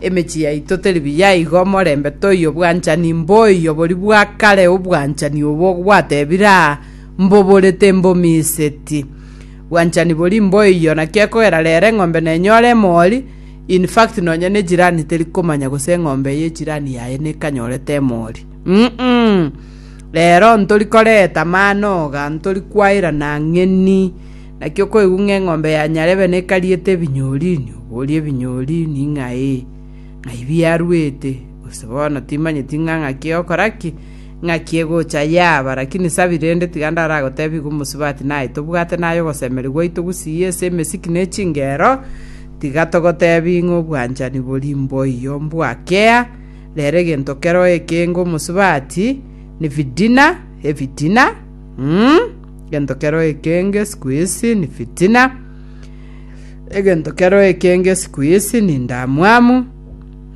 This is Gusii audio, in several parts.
Emechie yaito teri buya igo omorembe toiyo bwanchani mboiyo boria bwa kare obwanchani obo gwatebire aa mboborete mbomiseti bwanchani boria mboiyo naki ekogera rero eng'ombe nenyore emori in fact nonya ne jirani teri komanya gose eng'ombe ye jirani yaye nekanyorete emori mm -mm. rero ntori koreta manoga ntori kwairana ng'eni Naki okoigwa ng'a eng'ombe ya nyarebe nekariete ebinyorini, oborie ebinyorini ng'ai, ng'ai biaruete, gose bono timanyeti ng'a ng'aki ogokora ki, ng'aki egocha yaaba. Lakini sabi, rende tiga ndaragotebie igwa omosubati naye tobwate naye ogosemeria gwaito gusii ase emesiki ne chingero, tiga togotebie ng'a obwanchani bori mboiyo mbwakea, rero egento kero ekeenge omosubati, nefitina, efitina. Egento kero ekenge siku isi ni fitina, egento kero ekenge siku isi ni ndamwamu,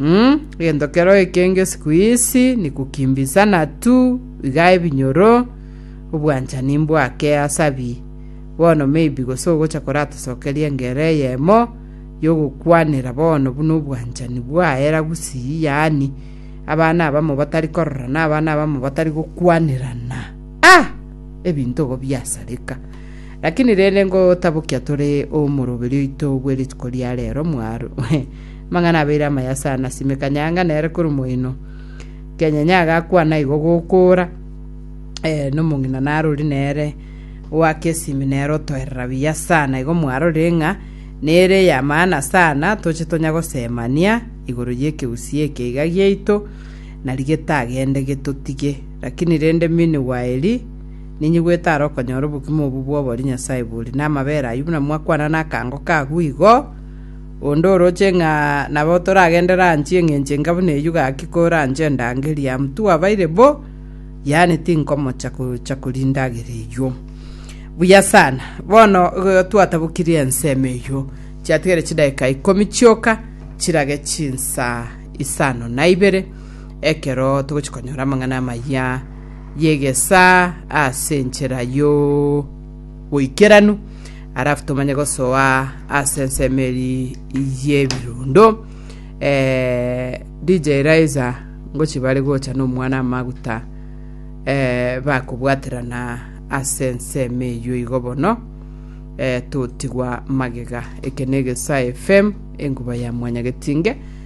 mm, egento kero ekenge siku isi ni kukimbisana tu iga ebinyoro obwanchani mbwake asabi bono maybe gose ogocha koratosokeria engere eyemo yogokwanera bono buna obwanchani bwaera gusii yaani abana abamo batari kororana abana abamo batari gokwanerana Ah! Ebinto igo biasareka. Lakini rende ngotabokia tore omoroberi oito bwe rituko ria rero mwaro. Amang'ana abeire amaya sana, sime kanyanga nere kore moino. Kenyenye agakwana igo gokora. Eh, nomong'ina narori nere wake esimi nere otoerera biya sana igo mwarorire ng'a nere ya maana sana toche tonya gosemania igoro y'ekegusii eke iga giaito nari getagende getotige Lakini rende mini gwaeri, ninyigwete are okonyora obogima obwo bw'obori Nyasae bori namabera ayio buna mwakwana nakango k'agwo igo. Onde oroche ng'a nabo toragendere anche eng'encho enga buna eyio gaki kore anche endango eria mtu abaire bo, yaani tinkomocha gocha koria endagera eyio. Buya sana. Bono igo twatabokirie ensemo eyio. Chiatigare chidaeka ikomi chioka chirage chinsa isano na ibere. ekero togochi konyora amang'ana amaya y'egesaa ase enchera y'oboikeranu, arafu tomanye gosoa ase ensemo eri y'ebirundo. Eh, DJ Eliza, ngochi bare gocha n'omwana amaguta eh, bakobwaterana ase ensemo eyio igo bono eh, totigwa magega eke na egesaa fm enkuba ya mwanyagetinge